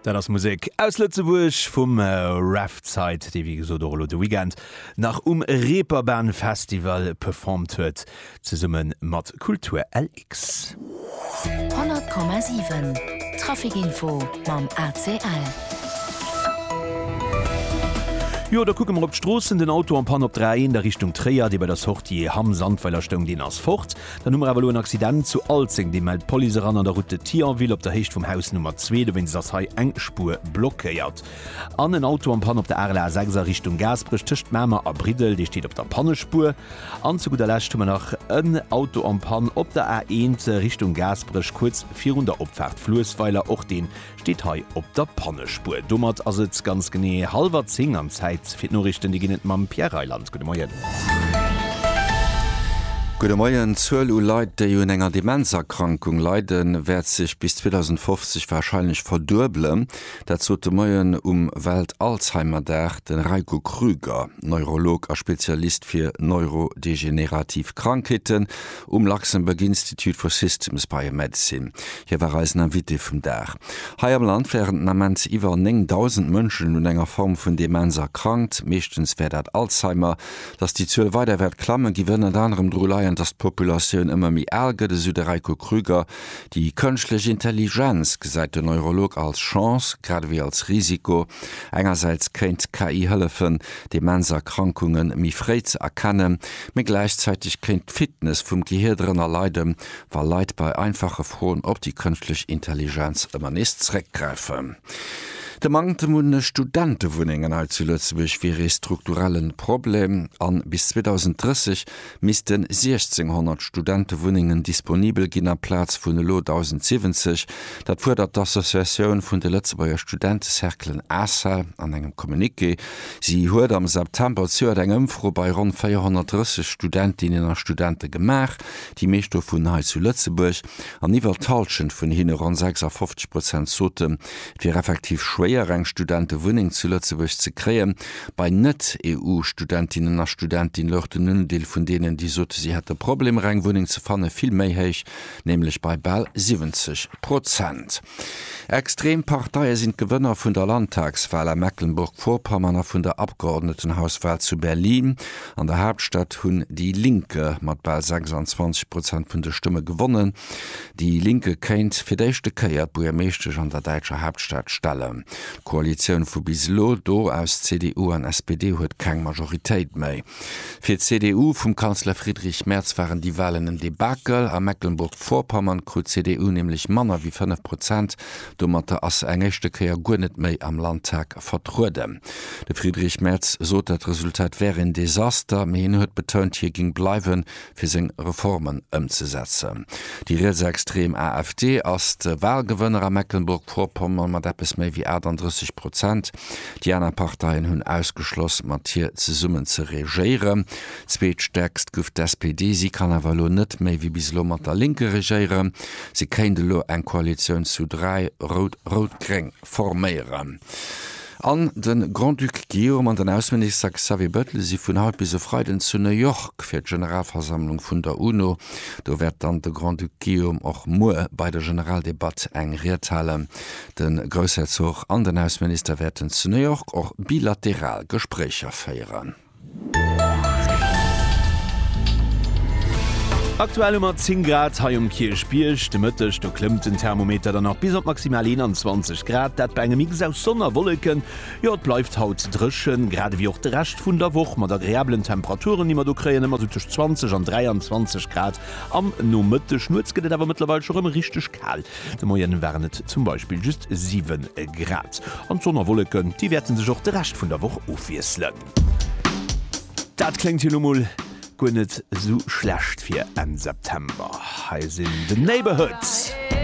Dat ass Musek aus Lëtzebuerg vum Revside, dee wéi gesot och elo de Weekend nach um Reeperbahn Festival performt huet, zesumme mat Kultur LX. 100,7 Trafic Info mam ACL. Jo, da kucke mer op d'Stroossen. Den Auto en panne op der A1 a Richtung Tréier, dee bei der Sortie Hamm-Sandweiler stoung, deen ass fort. Dann hu mer awer elo en Accident zu Alzeng, dee mellt d'Police eran an der Route de Thionville op der Héicht vum Haus Nummer 2. Dowéinst ass hei eng Spuer blockéiert. An en Auto am Panne op der Arler A6 a Richtung Gaasperech tëscht Mamer a Briddel, dee steet op der Pannespuer. An zu gudder Lescht hu mer nach en Auto am Pann op der A1 Richtung Gaasperech, kuerz virun der Opfaart Fluessweiler. Och dee Steet hei op der Pannespur. Domat ass et ganz genee hallwer 10 an Zäit fir d'Noriichten. Déi ginn et mam Pierre Reyland. Gudde Moien. Gudde Moien. D'Zuel u Leit, déi un enger Demenzerkrankung leiden, wäert sech bis 2050 warscheinlech verduebelen. Dat sot de Moien um Welt-Alzheimer-Dag de Reiko Krüger, Neurolog a Spezialist fir neurodegenerativ Krankheeten Um Luxembourg Institute for Systems Biomedicine. Hie war eisen Invité vum Dag. Hei am Land wären den Ament iwwer 9.000 Mënschen un enger Form vun Demenz erkrankt. Meeschtens wär dat Alzheimer. Datt déi Zuel weider wäert klammen, géif ënnert anerem dru leien, datt d'Populatioun ëmmer méi al gëtt, esou de Reiko Krüger. Déi kënschtlech Intelligenz gesäit den Neurolog als Chance, grad ewéi als Risiko. Engersäits kéint d'KI hëllefen, Demenzerkrankungen méi fréi ze erkennen. Mee gläichzäiteg kéint d'Fitness vum Gehier drënner leiden, wa Leit bei einfache Froen op déi kënschtlech Intelligenz ëmmer nees zréckgräifen. De Manktem un Studentewunnengen hei zu Lëtzebuerg wier ee strukturelle Problem a bis 2030 misste 1.600 Studentewunnengen disponibel ginn amplaz vun elo 1.070. Dat fuerdert d'Associatioun vun de Lëtzebuerger Studentecerclen, ACEL, an engem Communiqué. Si huet am September zejoert eng Ëmfro bei ronn 430 Studentinnen a Studente gemaach, déi meescht dovun hei zu Lëtzebuerg. An iwwer d'Hallschent vun hinne, ronn 56 Prozent, soten, et wier effektiv schwéier, eng Studentewunneng zu Lëtzebuerg ze kréien. Bei Net-EU-Studentinnen a Studenti louch den Undeel vun deenen, déi sote si hätte Problemer, eng Wunneng ze fanne, vill méi héich, nämlech bei bal 70 Prozent. Extrem Parteie sinn d'Gewënner vun der Landtagswal a Mecklenburg-Vorpommern a vun der Abgeordnetenhauswal zu Berlin. An der Haaptstad hunn déi Linke mat bal 26 Prozent vun de Stëmme gewonnen. Déi Linke kéint fir d'éischte Kéier d'Buergermeeschtesch an der däitscher Haaptstad stellen. D'Koalitioun vu bis elo do aus CDU an SPD huet keng Majoritéit méi. Fir d'CDU vum Kanzler Friedrich Merz waren déi Walen en Debakel. A Mecklenburg-Vorpommern krut d'CDU nämlech manner wéi 5 Prozent. Domatter ass se eng éischte Kéier guer net méi am Landtag vertrueden. De Friedrich Merz sot, dat Resultat wär een Desaster, mee hien huet betount, hie géing bleiwen, fir seng Reformen ëmzesetzen. Déi rietsextrem AfD ass de Walgewënner a Mecklenburg-Vorpommern mat eppes méi wéi 38 Prozent. Déi aner Parteien hunn ausgeschloss, mat hir zesummen ze regéieren. Zweetstäerkst guff d'SPD. Si kann awer elo net méi wéi bis elo mat der Lénker regéieren. Si kéint elo eng Koalitioun zu dräi, rout-rout-gréng, forméieren. An de Grand-Duc Guillaume an den Ausseminister Xavier Bettel si vun haut bis e Freiden zu New York fir d'Generalversammlung vun der UNO. Do wäert dann de Grand-Duc Guillaume och muer bei der Generaldebatt eng Ried halen. De Groussherzog an den Ausseminister wäerten zu New York och bilateral Gespréicher féieren. Aktuell hu mer 10 Grad hei um Kierchbierg. De Mëtteg do klëmmt den Thermometer dann nach bis op maximal 21 Grad, dat bei engem Mix aus Sonn a Wolleken. Jo, et bleift haut dréchen, grad ewéi och de Rescht vun der Woch, mat agreabelen Temperaturen, déi mer do kréien, ëmmer sou tëscht 20 an 23 Grad am Nomëtteg. Nuets gëtt et awer mëttlerweil scho rëm richteg kal. De Moien waren et zum Beispill just 7 Grad. An d'Sonn a Wolleken, déi wäerten sech och de Rescht vun der Woch ofwiesselen. Dat kléngt jo lo mol guer net esou schlecht fir Enn September. Hei sinn The Neighbourhoods.